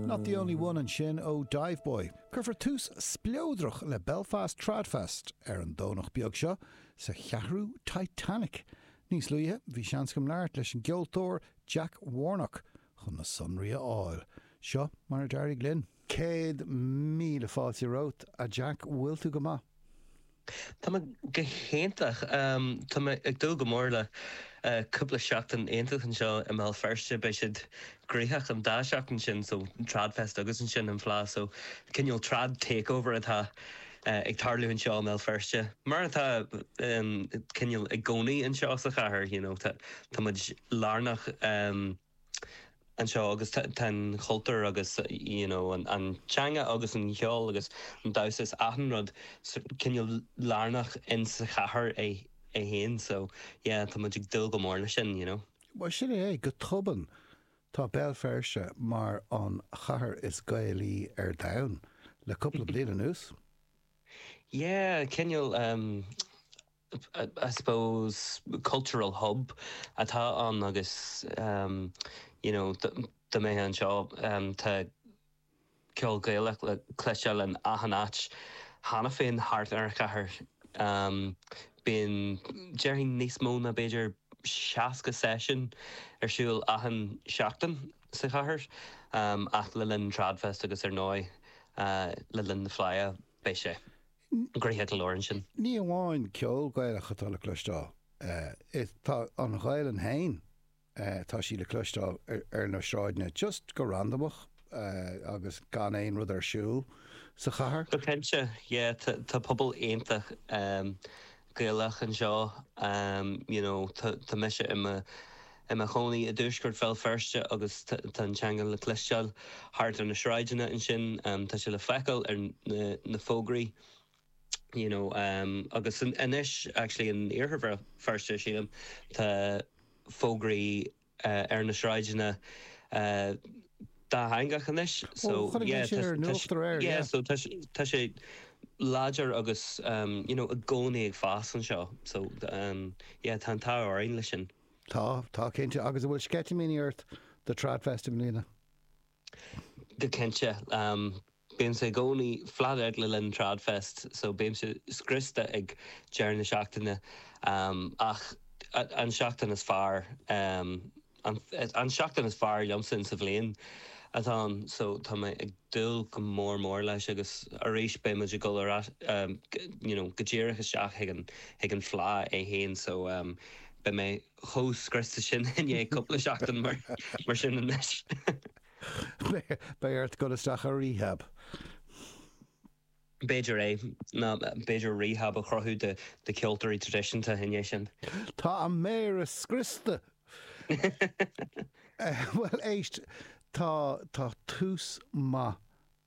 Not the only one ansin ó Diveboy. Cuirfear tús spleodrach le Belfast Tradfest ar an Domhnach beag seo sa Cheathrú Titanic. Níos luaithe bhí seans agam labhairt leis an gceoltóir Jack Warnock chun na sonraí a fháil. Seo mar a d'éirigh linn. Céad míle fáilte romhat, a Jack, bhfuil tú go maith? Tá mé go hiontach. Tá mé ag dúil go mór le cúpla seachtain iontach anseo i mBéal Feirste. Beidh siad gnoitheach an dá seachtain sin, so Tradfest agus ansin an Fleadh, so cineál trad takeover atá ag tarlú anseo i mBéal Feirste. Mar atá cineál i gcónaí anseo sa chathair, you know, tá muid lárnach. anseo agus tá an chultúr agus you know an teanga agus an cheol agus an damhsa is achan rud cineál lárnach in sa chathair é féin so yeah tá muid ag dúil go mór leis sin you know. Bhuel, sin é é. Go tobann, tá Béal Feirste mar an chathair is Gaelaí ar domhan le cúpla bliain anuas. Yeah, cineál. I suppose cultural hub atá ann agus you know dá mbeifeá anseo tá ceol Gaelach le cloisteáil in achan áit cheana féin thart ar an chathair. Bíonn déarfainn níos mó ná b'fhéidir seasca seisiún ar siúl achan seachtain sa chathair ach le linn Tradfest agus ar ndóigh le linn na Fleidhe beidh sé. gnoitheach go leor ansin. Ní amháin ceol Gaelach atá le cloisteáil, tá an Ghaelainn féin, tá sí le cloisteáil ar na sráideanna just go randamach agus gan aon rud ar siúl sa chathair. Go cinnte, yeah, tá pobal iontach Gaelach anseo you know tá mise i mo i mo chónaí i dtuaisceart Bhéal Feirste agus tá an teanga le cloisteáil thart ar na sráideanna ansin tá sé le feiceáil ar na na fógraí you know agus anois actually in iarthar Bhéal Feirste sílim tá fógraí ar na sráideanna dátheangach anois. Bhuel, chonaic mé sin ar an nuacht aréir, yeah. So tá sé láidir agus you know i gcónaí ag fás anseo. So yeah tá an t-ádh orainn leis sin. Tá, tá cinnte. Agus an bhfuil sceitimíní ort do TradFest i mbliana? Go cinnte. Bímse i gcónaí flat out le linn Tradfest so bímse scriosta ag deireadh na seachtaine ach an tseachtain is fearr, an tseachtain is fearr liomsa in sa bhliain atá ann so tá mé ag dúil go mór mór leis agus arís beidh muid ag dul ar you know go díreach isteach chuig an fleadh é fhéin so beidh mé chomh scriosta sin i ndiaidh cúpla seachtain más ea anois. Beidh ort dul isteach i rehab. B'fhéidir é. Ah b'fhéidir rehab a chruthú do cheoltóirí traidisiúnta i ndiaidh sin. Tá na méara scriosta! Bhuel, éist, tá tús maith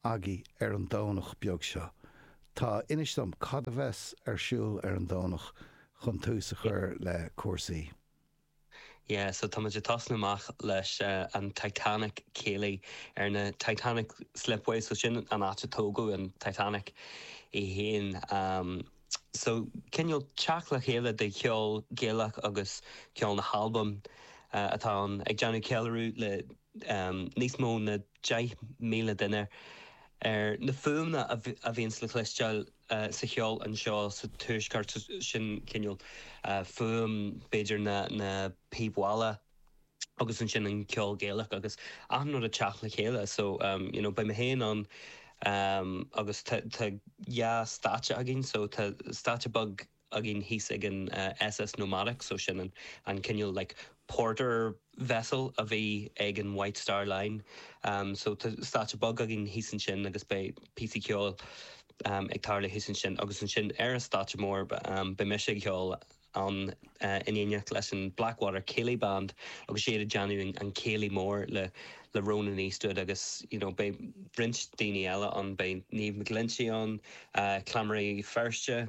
agaidh ar an Domhnach beag seo. Tá. Inis dom cad a bheas ar siúl ar an Domhnach chun tús a chur le cúrsaí. Yeah so táimid ag tosnú amach leis an Titanic céilí ar na Titanic Slipways so sin an áit a tógadh an Titanic í fhéin um so cineál teacht le chéile de cheol Gaelach agus ceol na hAlban atá ann ag déanamh ceiliúradh le níos mó ná 10,000 duine ar na fuaimeanna a bhíonns le cloisteáil sa cheol anseo sa tuaisceart, sin cineál fuaim b'fhéidir na píbe mála agus ansin an ceol Gaelach agus achan rud ag teacht le chéile so you know beidh mé féin ann agus tá dhá stáitse againn so tá stáitse beag againn thíos ag an SS Nomadic so sin an cineál like porter vessel a bhí ag an White Star Line so tá stáitse beag againn thíos ansin agus beidh píosaí ceoil ag tarlú thíos ansin agus ansin ar an stáitse mór beidh mise ag ceol ann in éineacht leis an Blackwater Céilí Band agus iad ag déanamh an céilí mór le le Ronan Eastwood agus you know beidh roinnt daoine eile ann beidh Niamh McGlinchey ann Cleamairí Feirste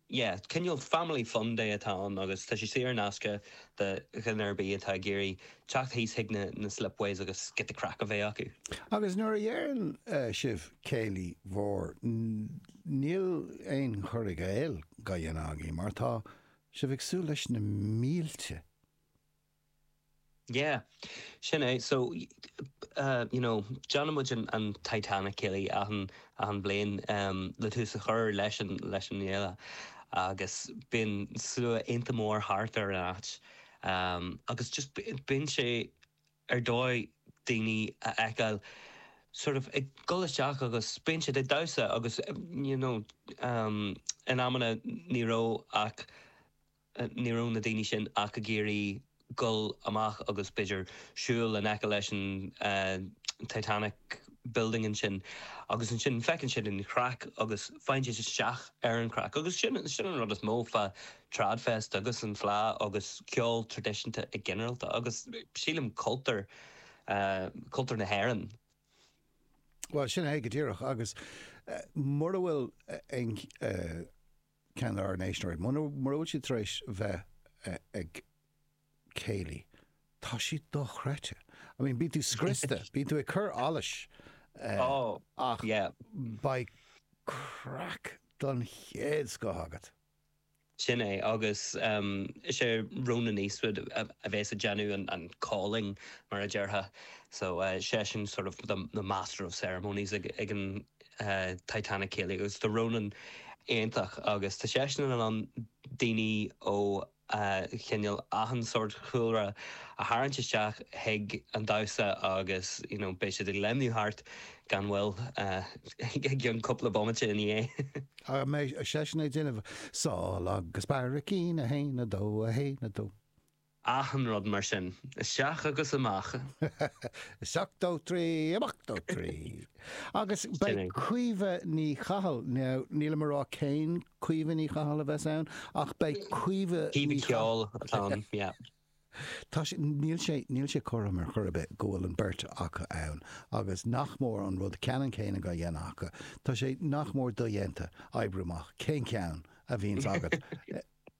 yeah, cineál family fun day atá ann agus tá sé saor in aisce do dhuine ar bith atá ag iarraidh teacht thíos chuig na na slipways agus giota craic a bheith acu. Agus nuair a dheireann sibh céilí mór, níl aon chur i gcéill, á dhéanamh agaibh, mar tá sibh ag súil leis na mílte. Yeah. Sin é. So, you know, déanann muid an Titanic Céilí achan bhliain le tús a chur leis an fhéile agus bíonn slua iontach mór thart ar an áit agus just bíonn sé ar dóigh daoine a fheiceáil sort of ag dul isteach agus bíonn siad ag damhsa agus, you know, in amanna ní raibh ach. Ní raibh na daoine sin ach ag iarraidh goil amach agus b'fhéidir siúl in aice leis an Titanic building ansin. Agus ansin feiceann siad an craic agus faigheann siad isteach ar an chraic. Agus sin an rud is mó fá Tradfest agus an Fleá agus ceol tradisiúnta i ginearalta agus sílim cultúr, cultúr na hÉireann. Bhuel, sin é go díreach. Agus mura bhfuil aon. ceann dár n-éisteoirí. Mura bhfuil siad tar éis bheith ag céilí, tá siad dochreidte. I mean, bíonn tú scriosta, bíonn tú ag cur allais, ach beidh craic den chéad scoth agat. Sin é, agus is é Ronan Eastwood a bheas ag déanamh an calling, mar a déarfá. So, seisean sort of the master of ceremonies ag an. Titanic Céilí agus tá Ronan iontach agus tá seisean in ann daoine ó chineál achan sórt chúlra a tharraingt isteach chuig an damhsa agus you know beidh siad ag léimniú thart gan mhoill i gceann cúpla bomaite ina dhiaidh. Ach an mbeidh seisean ag déanamh Sál agus Barraicín, a haon, a dó, a haon, a dó. achan rud mar sin. Isteach agus amach. Isteach dó trí, amach dó trí. Agus beidh Caoimhe Ní Chathail, now nílim ag rá cén Caoimhe Ní Chathail a bheas ann ach beidh Caoimhe Caoimhe Ní Chathail ceoil atá ann, yeah. Tá sé, níl sé, níl sé cothrom ar chor ar bith go bhfuil an beirt acu ann agus nach mór an rud ceannann céanna dá dhéanamh acu. Tá sé nach mór dodhéanta oibriú amach cén ceann a bhíonns agat.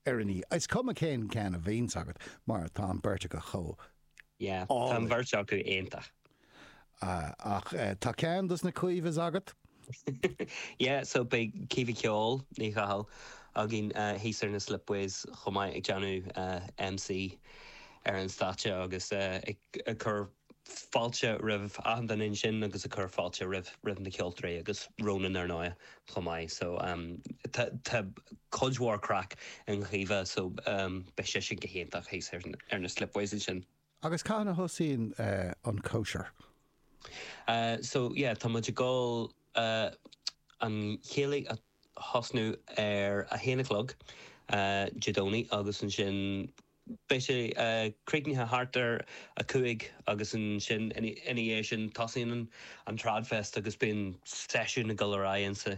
ar ndóigh. Is cuma cén ceann a bhíonns agat mar tá an beirt acu chomh Yeah, tá an bheirt acu iontach. Ah, ach tá ceann dos na Caoimhes agat. Yeah, so beidh Caoimhe Ceol Ní Chathail againn thíos ar na Slipways chomh maith ag déanamh MC ar an stáitse agus ag cur fáilte roimh achan duine ansin agus ag cur fáilte roimh na ceoltóirí agus Ronan ar ndóigh chomh maith so tá cuid mhór craic i gCaoimhe so beidh sé sin go hiontach thíos ar na Slipways ansin. Agus cathain a thosaíonn an chóisir? So yeah tá muid ag dul an céilí a thosnú ar a haon a chlog Dé Domhnaigh agus ansin Beidh sé críochnaithe thart ar a cúig agus ansin ina dhiaidh sin tosaíonn an Tradfest agus bíonn seisiúin ag dul ar aghaidh inti.